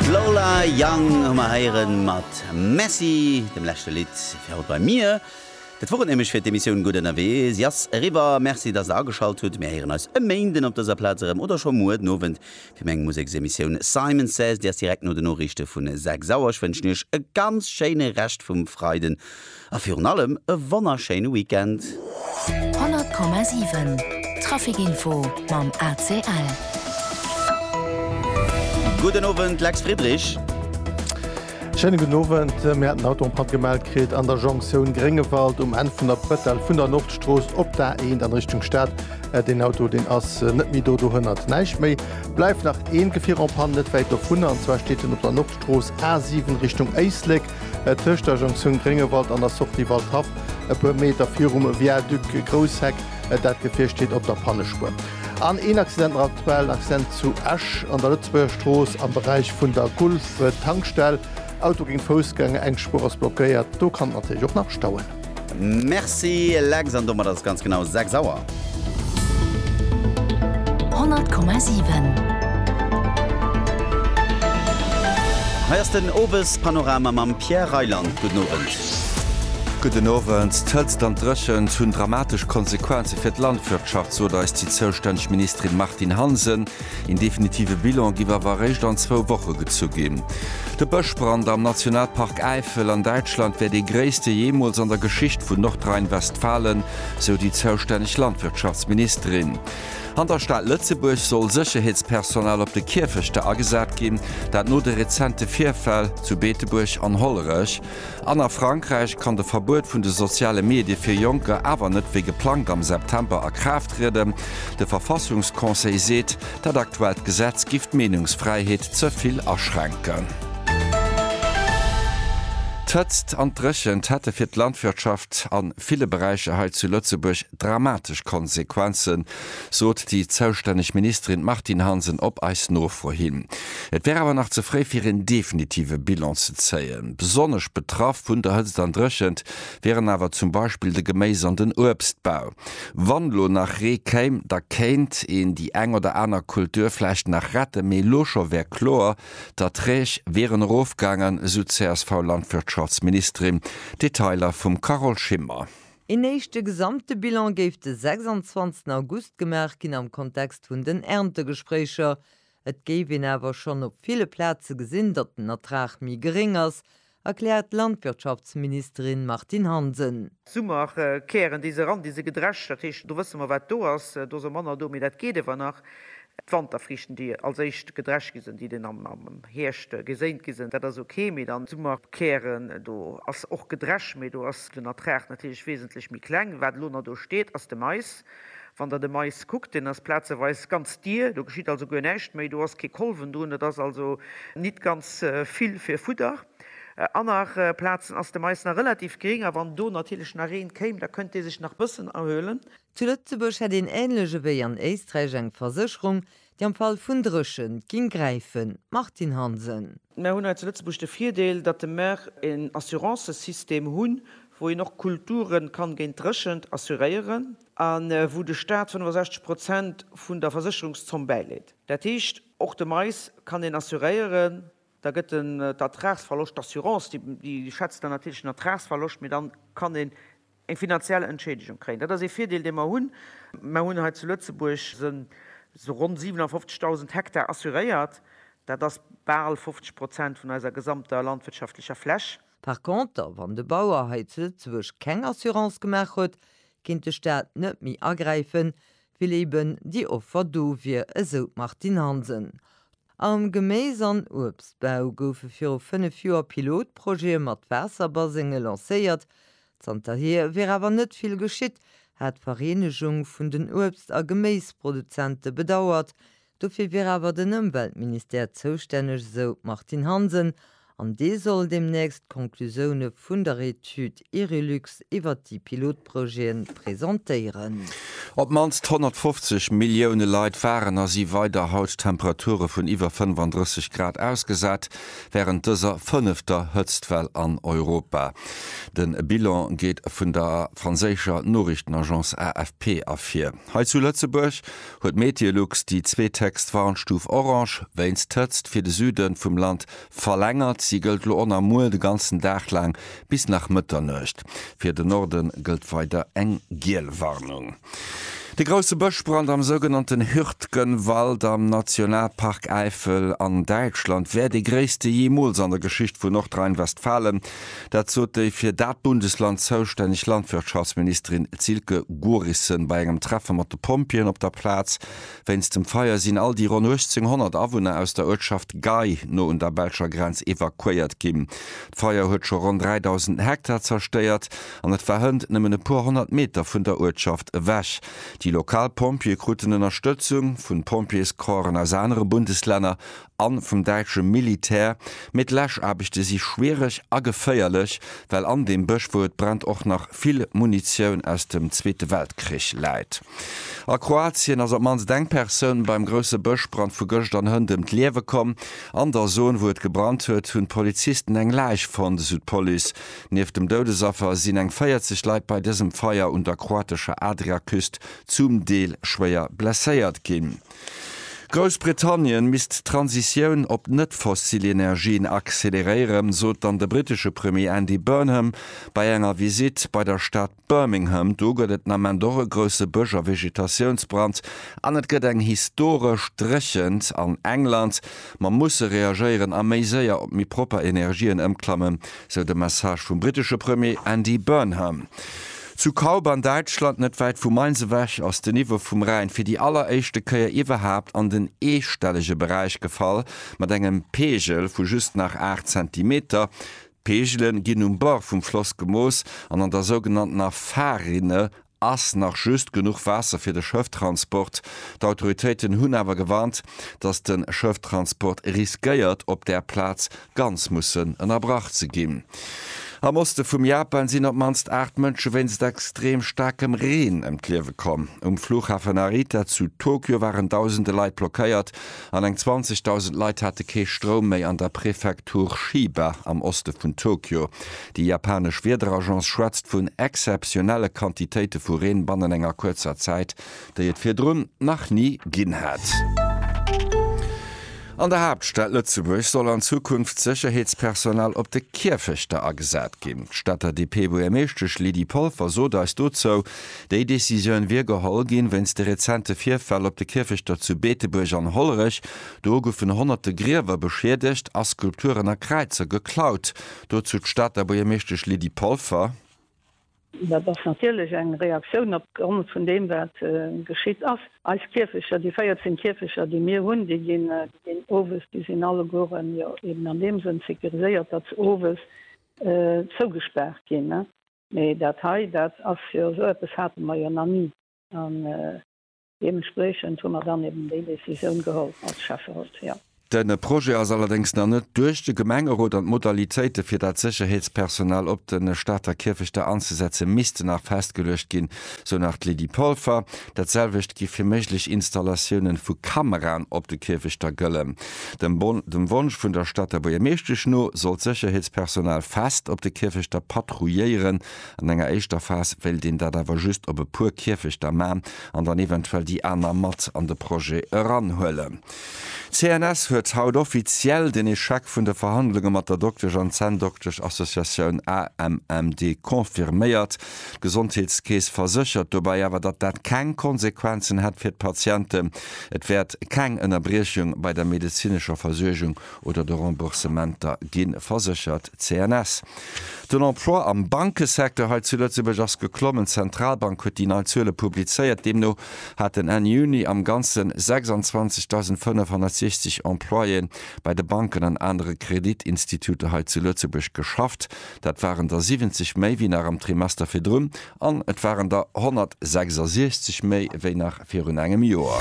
D'Lola Young hu mer héieren mat Messy, dem leschte Lidd fir haut bei mir. Dat wor et nämlech fir d'Emissioun Gutt Ënnerwee. Si ass eriwwer. Merci, dass der ageschalt hutt. Mir héieren eis e Méinden op dëser Plaz erëm oder scho muer den Owend fir meng Museksemissioun Simon Says. Déi ass direkt no den Noriichte vun 6 Auer. Ech wënschen iech e ganz schéine Rescht vum Freiden. A virun allem e wonnerschéine Weekend! 100,7 Trafic Info mam ACL. Gudden Owend, Lex Friedrich. Schéine gudden Owend. Mir haten haut och en Patt gemellt kritt an der Jonktioun Gréngewald um Enn vun der Bretelle vun der Nordstrooss op d'A1 an Richtung Stad. Deen Auto deen ass net méi do, dohënnert näischt méi. Bleift nach een Gefier en panne net wäit dovunner an zwar steet en op der Nordstrooss A7 Richtung Éislek. Tëscht der Jonktioun Gréngewald an der Sortie Waldhaff, e puer Meter virum Viaduc Grousseck, dat Gefier steet op der Pannespuer. An een Accident nach aktuell, en Accident zu Esch an der Lëtzebuerger Strooss am Beräich vun der Gulf-Tankstell. Auto géint Foussgänger, eng Spuer ass blockéiert, do kann et natierlech och nach stauen. Merci Lex, an domat ass et ganz genau 6 Auer. 100,7. Hei ass den Owespanorama mam Pierre Reyland. Gudden Owend. Gudden Owend. D'Hëtzt an d'Dréchent hunn dramatesch Konsequenze fir d'Landwirtschaft, sot eis déi zoustänneg Ministerin Martine Hansen. Een definitive Bilan giff awer eréischt an zwou Woche gezu ginn. De Bëschbrand am Nationalpark Äifel an Däitschland wär dee gréisste jeemools an der Geschicht vun Nordrhein-Westfalen, sou déi zoustänneg Landwirtschaftsministerin. An der Stad Lëtzebuerg soll Sécherheetspersonal op de Kierfechter agesat ginn, dat no de rezente Virfäll zu Beetebuerg an Hollerech. An a Frankräich kann de Verbuet vun de soziale Medie fir Jonker awer net wéi geplangt am September a Kraaft trieden. De Verfassungsconseil seet, dat aktuellt Gesetz giff d'Meenungsfräiheet ze vill aschränken. D'Hëtzt an d'Dréchent hätte fir d'Landwirtschaft a ville Beräicher hei zu Lëtzebuerg dramatesch Konsequenzen, sot déi zoustänneg Ministerin Martine Hansen op eis Nofro hin. Et wär awer nach ze fréi fir een definitive Bilan ze zéien. Besonnesch betraff vun der Hëtzt an Dréchent wieren awer zum Beispill de Geméis an den Uebstbau. Wann elo nach Ree kéim, da kéint een déi eng oder aner Kultur vläicht nach retten, mee elo scho wär kloer, d'Erträg wieren erofgaangen, esou d'CSV-Landwirtschaftsministerin. Detailer vum Carole Schimmer. Een éischte gesamte Bilan géif de 26 August gemaach ginn am Kontext vun den Erntegespréicher. Et géif een awer schonn op ville Plaze gesinn, datt den Ertrag méi geréng ass, erkläert d'Landwirtschaftsministerin Martine Hansen. Summerkären, déi se eran, déi se gedrescht, dat heescht do wësse mer wat do ass, do ass och manner do, mee dat geet iewer nach. D'Wanterfriichten, déi als éischt gedrescht gi sinn, déi den am Hierscht geséint gi sinn, dat ass ok, mee dann d'Summerkären, do ass och gedrescht, mee do ass den Ertrag natierlech wesentlech méi kleng. Wat elo nach do steet, ass de Mais. Wann Der de Mais kuckt, deen ass plazeweis ganz dier, do geschitt also guer näischt méi, do ass kee Kolwen drun, dat ass also nit ganz vill fir Fudder. Aner Plazen ass de Mais nach relativ gering a wann do natierlech nach Reen kéim, da kënnt dee sech nach bëssen erhuelen. Zu Lëtzebuerg hätt een ähnlech ewéi an Éisträich eng Versécherung, déi am Fall vun Dréchent ging gräifen. Martine Hansen. Mär hunn hei zu Lëtzebuerg de Virdeel, datt de mär een Assurancesystem hunn, wou een och Kulture kann géint Dréchent assuréieren a wou de Staat 65 Prozent vun der Versécherungszomm bäileet. Dat heescht, och de Mais kann een assuréieren. Da gëtt den d'Ertragsverloscht, d'Assurance déi schätzt dann natierlech den Ertragsverloscht, mee dann kann een eng finanziell Entschädigung kréien. Dat ass ee Virdeel, dee mer hunn. Mer hunn hei zu Lëtzebuerg esou ronn 57.000 Hektar assuréiert. Dat ass bal 50 Prozent vun eiser gesamter landwirtschaftlecher Fläch. Par contre, wann de Bauer hei zu Lëtzebuerg keng Assurance gemaach huet, kéint de Staat net méi agräifen, Well eben déi Offer do wier, esou d'Martine Hansen. Am Geméis an Uebstbau goufe viru fënnef Joer Pilotprojete mat Waasserbasenge lancéiert. Zanterhier wier awer net vill geschitt, hat d'Vereenegung vun den Uebst a Geméisproduzente bedauert. Dofir wier awer den Ëmweltministère zoustänneg, esou d'Martine Hansen, an dee soll deemnächst d'Conclusioune vun der Etüd Irelux iwwert déi Pilotprojete presentéieren. Op d'mannst 150 Millioune Leit waren a si weider haut Temperature vun iwwer 35 Grad ausgesat, wärend dëser fënnefter Hëtztwell an Europa. De Bilan geet vun der franséischer Noriichtenagence AFP ervir. Hei zu Lëtzebuerg huet Meteolux déi zweet héchst Warnstuf Orange wéinst Hëtzt fir de Süde vum Land verlängert. Si gëllt elo on a muer de ganzen Dag laang bis nach Mëtternuecht. Fir de Norde gëllt weider eng giel Warnung. De grousse Bëschbrand am sougenannten Hürtgenwald am Nationalpark Äifel an Däitschland wär dee gréisste jeemools an der Geschicht vun Nordrhein-Westfalen. Dat sot déi fir dat Bundesland zoustänneg Landwirtschaftsministerin Silke Gorissen bei engem Treffe mat de Pompjeeën op der Plaz. Wéinst dem Feier sinn all déi ronn 1.800 Awunner aus der Uertschaft Gei no un der belscher Grenz evakuéiert ginn. D'Feier huet scho ronn 3.000 Hektar zerstéiert an et war hënt nëmmen e puer honnert Meter vun der Uertschaft ewech. Déi lokal Pompjeeë kruten Ënnerstëtzung vun Pompjeescorpsen aus anere Bundeslänner a vum däitsche Militär, mee d'Läschaarbechte si schwiereg a geféierlech, well an deem Bësch, wou et brennt, och nach vill Munitioun aus dem Zweete Weltkrich läit. A Kroatien ass op d'mannst eng Persoun beim grousse Bëschbrand vu gëscht an Hënt ëm d'Liewe komm. An der Zon, wou et gebrannt huet, hunn d'Polizisten eng Läich fonnt, esou d'Police. Nieft dem Doudesaffer sinn eng 40 Leit bei dësem Feier un der kroatescher Adriaküst zum Deel schwéier blesséiert ginn. Groussbritannien misst d'Transitioun op net-fossil Energien acceleréieren, sot dann de brittesche Premier Andy Burnham bei enger Visitt bei der Stad Birmingham. Do gëtt et den Ament och e grousse Bësch a Vegetatiounsbrand an et gëtt eng historesch Dréchent an England. Mer musse reagéieren a méi séier op méi propper Energien ëmklammen, sou de Message vum brittesche Premier Andy Burnham. Zu Kaub an Däitschland, net wäit vu Mainz ewech, ass de Niveau vum Rhäin fir déi alleréischte Kéier iwwerhaapt an den eestellege Beräich gefall, mat engem Peegel vu just nach 8 Zentimeter. D'Peegele ginn um Bord vum Floss gemooss an an der sougenanntener Fahrrinne ass nach just genuch Waasser fir de Schëfftransport. D'Autoritéiten hunn awer gewarnt, datt de Schëfftransport riskéiert op där Plaz ganz mussen ënnerbrach ze ginn. Am Oste vum Japan sinn op d'mannst 8 Mënsche wéinst extrem staarkem Reen ëm d'Liewe komm. Um Fluchhafen Narita zu Tokio waren dausende Leit blockéiert an eng 20.000 Leit hate kee Stroum méi an der Prefektur Chiba am Oste vun Tokio. Déi japanesch Wiederagence schwätzt vun exzeptionelle Quantitéite vu Reen bannen enger kuerzer Zäit, déi et virdrun nach ni ginn hat. An der Haaptstad Lëtzebuerg soll an Zukunft Sécherheetspersonal op de Kierfechter agesat ginn. D'Stater DP-Buergermeeschtesch Lydie Polfer sot eis dozou, déi Decisioun wier geholl ginn, wéinst de rezente Virfäll op de Kierfechter zu Beetebuerg an Hollerech. Do goufen honnerte Griewer beschiedegt a Skulpturen a Kräizer geklaut. Dozou d'Stater Buergermeeschtesch Lydie Polfer. Dat ass natierlech eng Reaktioun op Grond vun deem, wat geschitt ass. Eis Kierfecher, déi 14 Kierfecher, déi mir hunn, déi ginn owes, déi sinn allegueren jo eben an deem Sënn sécuriséiert, datt se owes zougespaart ginn. Mee dat hei, dat ass jo, esou eppes hate mer jo nach ni. Deementspriechend hu mer dann eben déi Décisioun geholl als Schäfferot, jo. De Projet ass allerdéngs nach net duerch de Gemengerot an d'Modalitéite fir dat Sécherheetspersonal op de Stater Kierfechter anzesetze misste nach festgeluecht ginn, sou nach d'Lydie Polfer. Dat selwecht géif fir méiglech Installatioune vu Kameraen op de Kierfechter gëllen. Dem Wonsch vun der Stater Buergermeeschtesch no soll d'Sécherheetspersonal fest op de Kierfechter patrouilléieren An enger éischter Phas wéilt een dat awer just op e puer Kierfechter man an dann eventuell déi aner mat an de Projet eranhuelen. D'CNS huet haut offiziell den Echec vun de Verhandlunge mat der Doktesch an Zänndoktesch-Associatioun AMMD confirméiert. D'Gesondheetskeess verséchert dobäi awer, datt dat keng Konsequenzen hätt fir d'Patienten. Et wäert keng Ënnerbriechung bei der medezinescher Versuergung oder de Remboursementer gi verséchert, CNS. Den Emploi am Bankesecteur hei zu Lëtzebuerg ass geklommen. D'Zentralbank huet déi nei Zuele publizéiert. Deemno haten Enn Juni am Ganzen 26.560 Employéen bei de Banken an anere Kreditinstituter hei zu Lëtzebuerg geschafft. Dat waren der 70 méi wéi nach am Trimester virdrun, An et waren der 166 méi wéi nach virun engem Joer.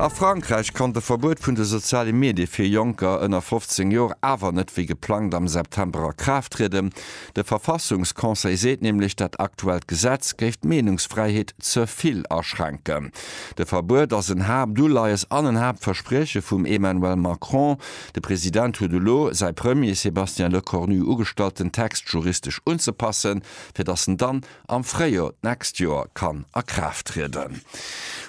A Frankräich konnt e Verbuet vun de soziale Medie fir Jonker ënner 15 Joer awer net wéi geplangt am September a Kraaft trieden. De Verfassungsconseil seet nämlech, dat aktuellt Gesetz géif d'Meenungsfräiheet ze vill aschränken. De Verbuet ass en Haaptuleies an en Haaptversprieche vum Emmanuel Macron, De President huet elo säi Premier Sébastien Lecornu ugestallt den Text juristesch unzepassen, fir datt en dann am Fréijor d'nächst Joer kann a Kraaft trieden.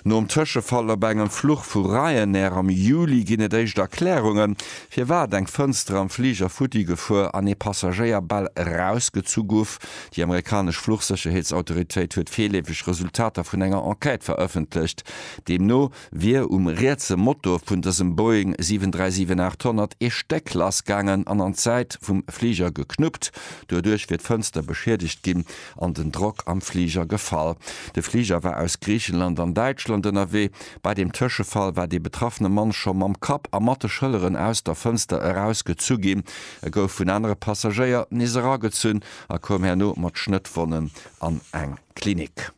Nom Tëschefall op engem Fluch vu Ryanair am Juli ginn et éischt Erklärungen, firwat eng Fënster am Fliger futti gefuer an ee Passagéier bal erausgezu gouf. Déi amerikanesch Fluchsécherheetsautoritéit huet virleefeg Resultater vun enger Enquête verëffentlecht, deemno, wier um rietse Motor vun dësem Boeing 737-800 ee Stéck lass gaangen an an d'Säit vum Fliger geknuppt. Doduerch wier d'Fënster beschiedegt ginn an den Drock am Fliger gefall. De Fliger war aus Griichenland an Däitschland ënnerwee. Bei dem Tëschefall war dee betraffene Mann scho mam Kapp a mat de Schëlleren aus der Fënster erausgezu ginn. E gouf vun anere Passagéier nees eragezunn a koum herno mat Schnëttwonnen an eng Klinik.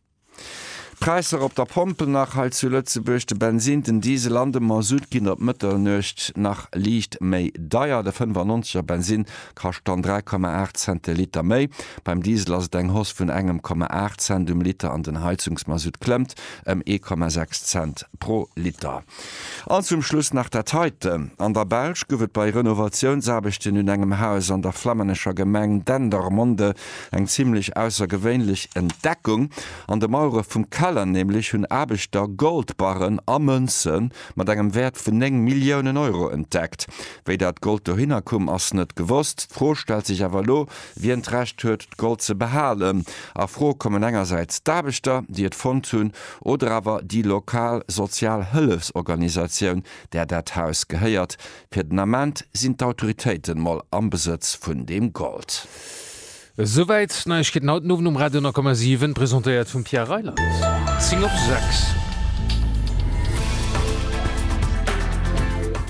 D'Präisser op der Pompel nach hei zu Lëtzebuerg, de Bensin, den Diesel an de Mazout ginn op Mëtternuecht nach liicht méi deier. De 95 er Bensin kascht dann 3,8 Cent de Liter méi, beim Diesel ass et eng Hausse vun engem Komma 8 Cent um Liter an den Heizungsmazout klëmmt ëm ee Komma 6 Cent pro Liter. An zum Schluss nach dat heite, An der Belsch gouf et bei Renovatiounsaarbechten un engem Haus an der flammännescher Gemeng Dendermonde eng zimlech aussergewéinlech Entdeckung. An de Mauere vum Keller nämlech hunn Aarbechter Goldbarren a Mënze mat engem Wäert vun 9 Milliounen Euro entdeckt. Wéi dat Gold dohinner koum, ass net gewosst. D'Fro stellt sech awer elo, wien d'Recht huet, d'Gold ze behalen. A Fro kommen engersäits d'Aarbechter, déi et fonnt hunn, oder awer déi lokal sozial Hëllefsorganisatioun, där dat Haus gehéiert. Fir den Ament sinn d'Autoritéiten mol am Besëtz vun deem Gold. Esouwäit d'Neiegkeeten haut den Owend um Radio 10,7, presentéiert vum Pierre Reyland. 10 op 6.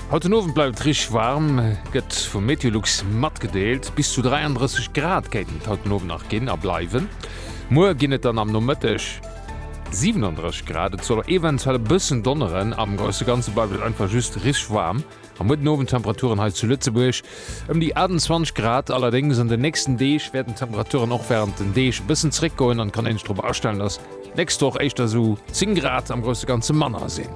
Haut den Owend bleift et richteg waarm, gëtt vu Meteolux matgedeelt. Bis zu 33 Grad kéinten et haut den Owend nach ginn a bleiwen. Muer ginn et dann am Nomëtteg. 37 Grad, et soll eventuell e bëssen donneren, am grousse Ganze bleift et einfach just richteg waarm. Am muerten Owend d'Temperaturen hei zu Lëtzebuerg ëm déi 28 Grad. Allerdéngs an den nächsten Deeg wäerten d'Temperaturen och wärend den Deeg e bëssen zeréckgoen an et kann een sech drop astellen, dass d'nächst Woch éischter esou 10 Grad, am grousse Ganze manner, sinn.